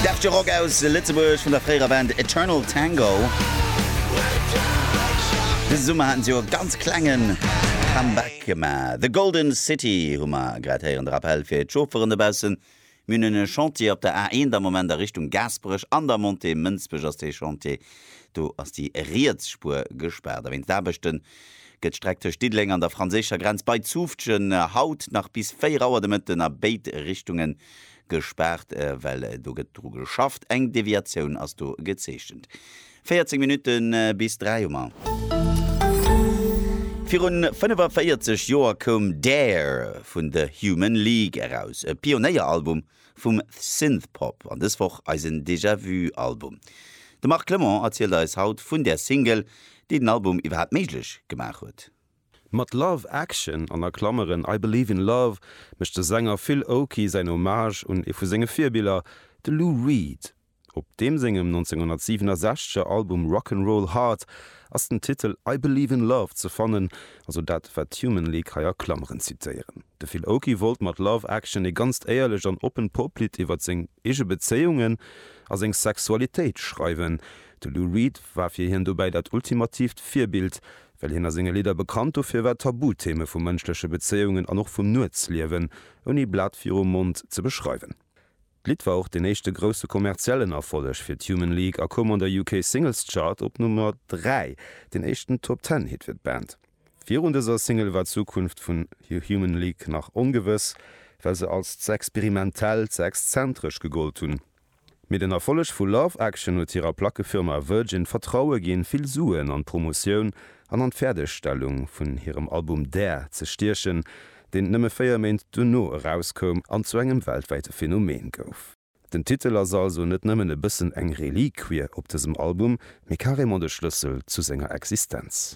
Deftige Rock aus Lëtzebuerg vun der fréierer Band Eternal Tango. Dëse Summer haten si jo e ganz klenge Comeback gemaach. The Golden City hu mer grad héieren. De Rappell fir d'Chaufferen dobaussen, Mir hunn en Chantier op der A1 am Moment a Richtung Gaasperech. An der Montée Mënsbech ass dee Chantier, do ass déi riets Spuer gespaart. A wéinst Aarbechte gëtt d'Streck tëscht Diddeleng an der franséischer Grenz bei Zufftgen haut nach bis 4 Auer de Mëtten a béid Richtunge gespaart, well do gëtt dru geschafft. Eng Deviatioun ass do gezeechent. 14 Minutte bis 3 hu mer. Virun 45 Joer koum Dare vun The Human League eraus, e Pionéieralbum vum Synthpop an dës Woch eisen Déjà Vu Album. De Marc Clement erzielt eis haut vun där Single, déi den Album iwwerhaapt méiglech gemaach huet. Mat Love Action, an a Klameren, I Believe in Love, mécht de Sänger Phil Oakey säin Hommage un ee vu senge Virbiller, de Lou Reed. Op deem sengem 1967er Album Rock 'n' Roll Hard ass den Titel I Believe in Love ze fannen, also dat, wat d'Human League hei a Klameren zitéieren. De Phil Oakey wollt mat Love Action ee ganzt éierlecht an oppent Poplidd iwwer seng eege Bezéiungen a seng Sexualitéit schreiwen. De Lou Reed war fir hien dobäi dat ultimatiivt Virbild, Well hien a senge Lidder bekannt dofir war, Tabutheme vu mënschleche Bezéiungen an och vum Nuetsliewen ouni Blat virum Mond ze beschreiwen. D'Lidd war och deen éischte grousse kommerziellen Erfolleg fir d'Human League a koum an der UK Singles Chart op Nummer 3, deen éischten Top Ten Hit fir d'Band. Virun dëser Single war d'Zukunft vun The Human League nach ongewëss, well se als ze experimentell, ze exzentresch gegollt hunn. Mee den Erfolleg vu Love Action huet hirer Plackefirma Virgin d'Vertraue ginn, vill Suen an d'Promotioun an an d'Fäerdegstellung vun hirem Album Dare ze stiechen, deen nëmme véier Méint duerno erauskoum an zu engem weltwäite Phänomen gouf. Den Titel ass also net nëmmen e bëssen eng Reliquie op dësem Album, mee carrément de Schlëssel zu senger Existenz.